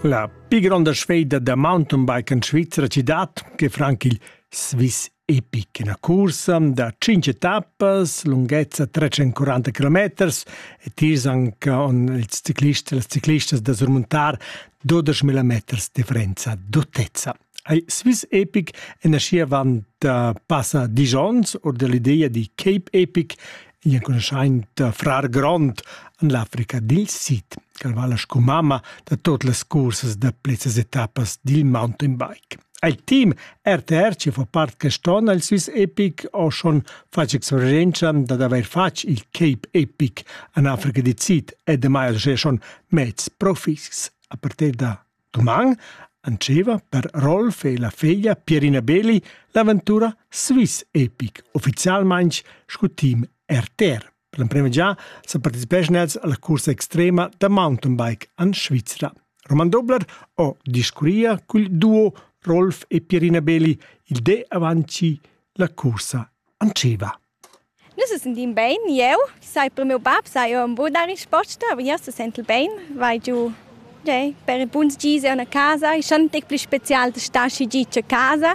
La pli gronda sfeida da mountainbiken svizra ci dat che franc il Swiss Epic ina cursa da 5 etappas, lunghezza 340 km e tiers anche on il ciclist e les ciclistas da surmontar 12.000 meters differenza d'autezza. Ei Swiss Epic è nascì avant uh, passa disch onns or dall'ideia di Cape Epic, igl enconuschaint uh, frar grond en l'Africa dil Sid, ch'el vala sco mamma da tot las cursas da plezzas etappas dil mountain bike. Al team RTR che fa part quest'onn al Swiss Epic ho schon fatg experienza dad haver fatg il Cape Epic en Africa di Sid e demai al schon mezz profis a partir da Duman antscheva per Rolf e la feglia Pierina Beli l'aventura Swiss Epic, ufficialmain sco team RTR. Per l'emprima già sa participeschan els alla cursa extrema da mountainbike en Svizra. Roman Dobler ho discurria cul duo Rolf e Pierina Beli il de avanti la cursa antscheva. Nus sentin bein, jeu, sai per miu bab, sai jeu embu dar risposta, aber jeu sesentel bein, vai giu tgei, per ils buns gis en a casa, ei schon tec pli special da star schi git a casa.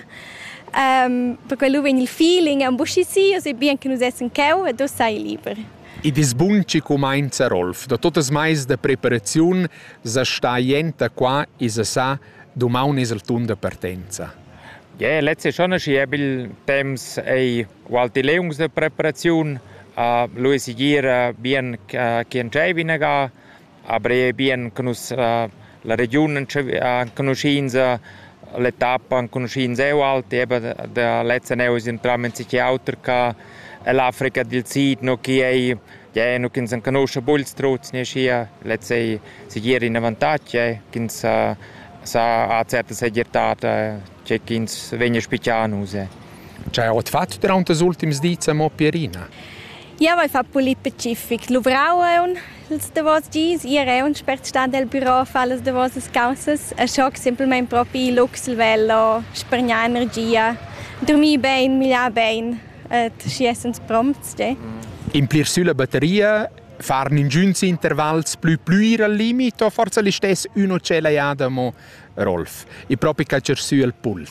per quello vegn il feeling embuschi si, o sai bien che nus essen cheu ed uss sei liber. Id es bun chi cumainza Rolf, da totas mais da preparaziun sa sta jent da qua, i's sa sa, dumaun es il tun da partenza. Yeah, lezza schon aschi habil temps ei ualti leungs da preparaziun. Uh, lu ei segira bien che entscheivi inaga, aber ei bien che nus uh, la regiun enconuschinsa, l'etappa enconuschins eu alti, eben da lezza neu sind tram in sich auter ca ell'Africa dil Sid, no chi ei Gie, nu ch'ins enconuscha buns truts ni aschia, lez ei segir in avantatg eh, ch'ins sa, sa ha certa segirtad eh, tgei ch'ins vegn a spitgar nus. Eh. Tgei ha ot fatg durante ils ultims dis a Mo Pierina? Ja, vai fa pulit specific. Luvrau un els davos gis, ir è un spertstad del bureau fa les davosas causas, a schoc simpelmente propi luxlvelo, spargnar energia, dormir ben, migliar ben. ed schi essans prompts, de. Implir sülla batteria farn ingüns intervals plü plüir al limit o forsa listess ün o tschella jada mo Rolf, e propi calcher sü al puls?